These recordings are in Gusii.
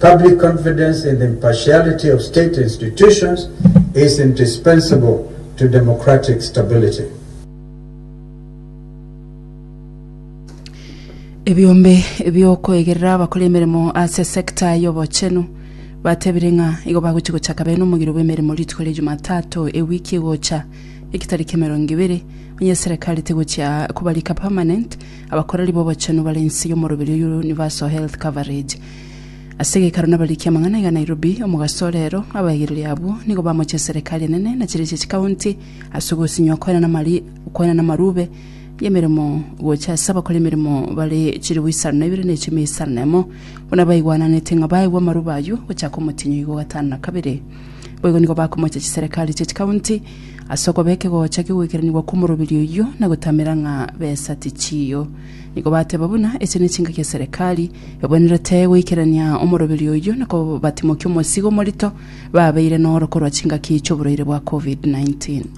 Public confidence in the impartiality of state institutions is indispensable to democratic stability. Ebiombe bi'okoegerera abakora emeremo ase sector y'obochenu batebire ng'a igo bagochia gochaka bene omogiro bw'emeremo rituko ria Jumatatu ewiki egocha, egetari k'emerongo ibere, onye eserekari tegochia kobarika permanent, Abakoreri b'obochenu bare inse y'omoroberi o Universal Health Coverage. Ase egekaro nabarikia amang'ana iga Nairobi, omogaso ore ero, abaigereri abwo nigo bamochia eserekari enene na chirichi chikaunti ase ogosinywa okoena namari okoena namarube y'emeremo gocha ase abakora emeremo bare chilifu isano na ibere na echiumi isano na emo buna baigwananete ng'a baegwa amarube ayio gochaka omotinyo iga ogatano na kabere. Boigo nigo bakomocha chiserekari chie chikaunti ase okoba ekegocha kigweikeraniwa kw'omorobiri oyio na gotamera ng'a besa tichiyo. Nigo bateba buna echi nechingaki eserekari ebwenerete goikerania omorobiri oyio na kobatimokia omosigo omorito babeire noro korwa chingaki chi'oborwaire bwa Covid-19.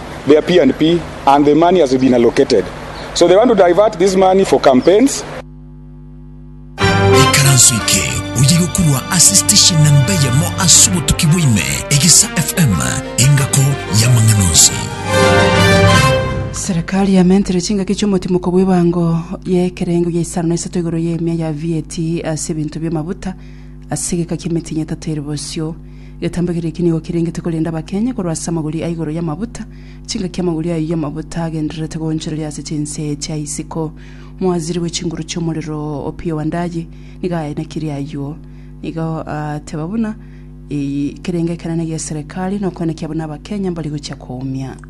their P and P and the money has been allocated so they want to divert this money for campaigns. Ekaranso eke oye gokurwa ase station namba eyemo ase obotuki bwaime, Egesa FM, engako y'amang'ana onsi. Serikali yamentire chingaki chi'omotimoko bw'ebango y'ekerengo gia isano na isato igoro y'emia ya VAT ase ebinto bi'amabuta ase egeka ki'emetinyi etato ere bosio. Getambe keria eki nigo kerengete korenda abakenye korwa ase amagori a igoro y'amabuta. Chingaki amagori ayio y'amabuta agendererete goonchoreria ase chinse chia isiko. Moaziri bwe chinguru chi'omorero o Opiyo wa Ndayi nigo aenekirie ayio. Nigo aateba buna, Eyi kerenge ekenene gi'eserekari, nokoenekia buna Abakenya mbari gochia koumia.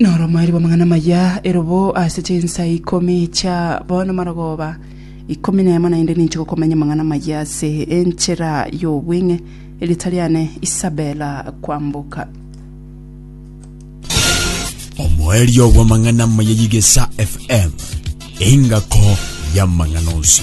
Noromoerio bw'amang'ana amaya erobo ase chinsa ikomi chia bono marogoba ikomi nemo naende ninche gokomanya amang'ana amaya ase enchera y'obweng'e. Erieta riane Isabela Kwamboka. Omoerio bw'amang'ana amaya y'Egesa FM, engako y'amang'ana onsi.